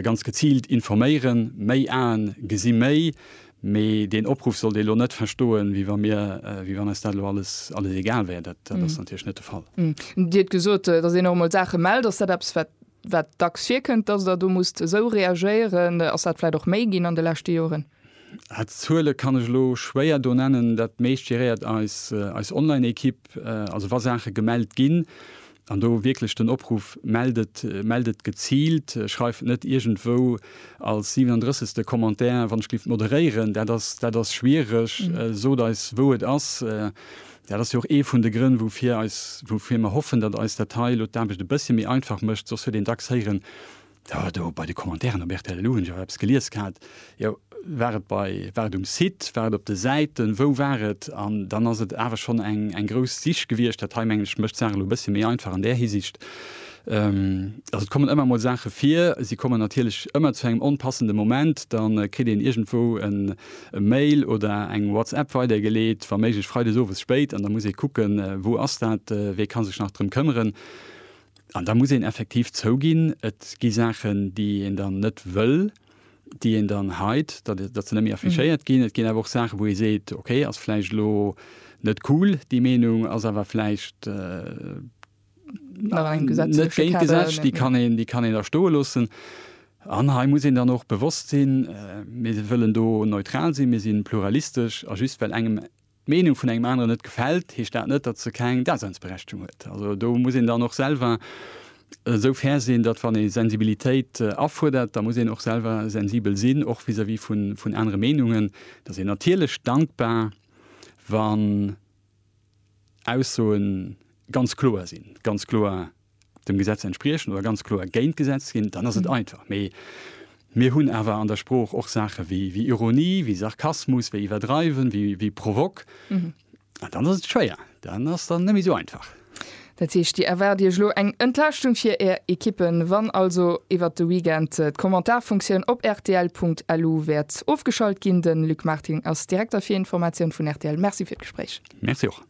Ganz geziilt informéieren, méi Aen gesi méi. Mee deen Opruff sollt ee lo net verstoen, wéi wa mir, wéi wann eis dat lo alles, alles egal wär. Dat, dat ass natierlech net de Fall. Dir hutt gesot, datt een och emol Saache mellt. Ass dat eppes, wat, wat dacks virkënnt, datt Der do musst esou reagéieren? Ass dat vläicht och méi ginn an de leschte Joren? Aah, d'Zuele kann ech elo schwéier do nennen. Dat meescht geréiert eis, eis Online-Ekipp. Also wa Saache gemellt ginn, an do wierklech den Opruff, mellt et, mellt et geziilt, schreift net iergendwou als 37. te Commentaire, wann ech géif moderéieren. Dat ass, dat ass schwiereg. Sot eis, wou et ass. Dat ass jo och ee vun de Grënn, woufir eis, woufir mer hoffen, datt eis dat hei elo d'Aarbecht e bëssche méi einfach mécht. Soss huet een dacks héieren, Jo, do bei de Commentairen op rtl elo hunn ech och eppes gelies gehat. Jo, war et bei, war et um Site, war et op de Säiten, wou war et? An dann ass et awer schonn eng, eng grouss Sich gewiescht. Dat hei, mengen ech, mécht d'Saach elo e bëssche méi einfach an där Hisiicht. Also et kommen ëmmer emol Saache vir. Si kommen natierlech ëmmer zu engem onpassende Moment. Da kritt een iergendwou en, e Mail oder eng WhatsApp weidergeleet, wa méiglech freides owes spéit, an da muss ee kucken, wou ass dat, wee ka sech nach drëm këmmeren. An da muss een effektiv zouginn, et gi Saachen, déi een dann net wëll, déi een dann hide, datt se net méi affichéiert ginn. Et ginn awer och Saachen, wou ee seet, okay, ass vläicht elo net cool, déi Meenung ass awer vläicht net géint d'Gesetz, déi kann een da stoe loossen. An hei muss een dann och bewosst sinn, mir wëllen do neutral sinn, mir si pluralistesch a just well engem D'Meenung vun engem aneren net gefält, heescht dat net, datt se keng Daseinsberechtigung huet. Also do muss een dann och selwer esou fair sinn, datt wann ee Sensibilitéit afuerdert, da muss een och selwer sensibel sinn, och vis-à-vis vun anere Meenungen. Da ass een natierlech dankbar, wann Aussoe ganz kloer sinn, ganz kloer. dem Gesetz entspriechen oder ganz kloer géint d'Gesetz ginn, dann ass et einfach. Mee mir hunn awer an der Sprooch och Saache wéi, wéi Ironie, wéi Sarkasmus, wéi iwwerdreiwen, wéi, wéi Provok. An dann ass et schwéier, dann ass dann net méi esou einfach. Dat heescht, Dir erwaart Iech elo eng Entlaaschtung fir Är Ekippen, wann also iwwert de Weekend d'Kommentarfunktioun op rtl.lu wäert ofgeschalt ginn. De Luc Marting ass Direkter fir Informatioun vun rtl. Merci fir d'Gespréich. Merci och.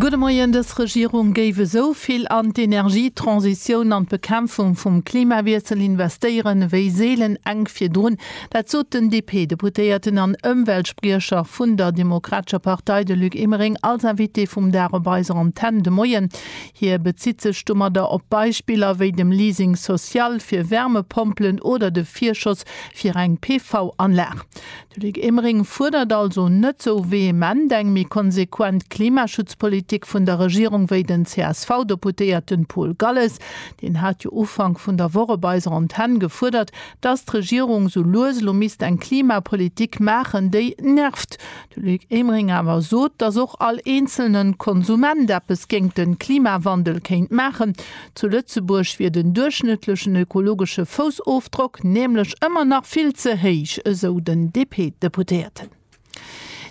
Gudde Moien, Dës Regierung géif esou vill an d'Energietransitioun an d'Bekämpfung vum Klimawiessel investéieren ewéi seelen enk virdrun. Dat sot den DP-Deputéierten an Ëmweltspriecher vun der Demokratescher Partei, de Luc Emering, als Invité vum Dag op eiser Antenn de Moien. Hie bezitt sech domadder op Beispiller wéi dem Leasing social fir Wärmepompelen oder de Virschoss fir eng PV-Anlag. De Luc Emering fuerdert also net sou vehement eng méi konsequent Klimaschutzpolitik vun der Regierung wéi den CSV-Deputéierten Paul Galles. Deen hat jo Ufank vun der Woch op eiser Antenn gefuerdert, dass d'Regierung sou lues elo misst eng Klimapolitik maachen, déi nervt. De Luc Emering awer sot, dass och all eenzelnen Konsument eppes géingt den Klimawandel kéint maachen. Zu Lëtzebuerg wier den duerchschnëttlechen ökologesche Foussofdrock nämlech ëmmer nach vill ze héich, esou den DP-Deputéierten.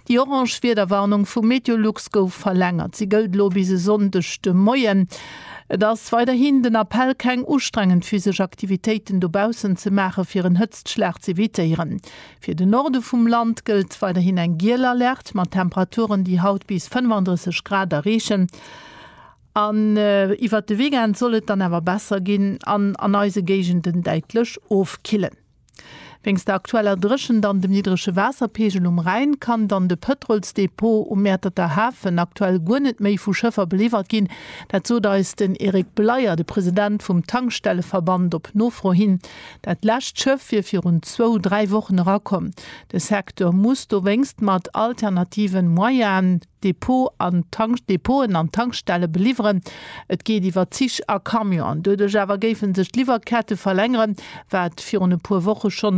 Déi orange Wiederwarnung vu Meteolux gouf verlängert. Si gëllt elo bis e Sonndeg de Moien. Et ass weiderhin den Appell, keng ustrengend physesch Aktivitéiten dobaussen ze maachen, fir en Hëtztschlag z'evitéieren. Fir de Norde vum Land gëllt weiderhin eng giel Alerte, mat Temperaturen, déi haut bis 35 Grad erreechen. An iwwert de Weekend soll et dann awer besser ginn an an eise Géigenden däitlech ofkillen. Wéinst der aktueller Dréchent an dem niddrege Waasserpeegel um Rhäin kann dann de Pëtrolsdepot um Mäerterter Hafen aktuell guer net méi vu Schëffer beliwwert ginn. Dat sot eis den Eric Bleyer, de President vum Tankstelleverband, op Nofro hin. Dat lescht Schëff wier virun zwou, dräi Wochen erakomm. De Secteur muss dowéinst mat alternativen Moyaen. Depoten an Tankstelle beliwweren. Et geet iwwer Zich a Camionen. Doduerch awer géife sech d'Liwwerkette verlängeren, wat virun e puer Woche scho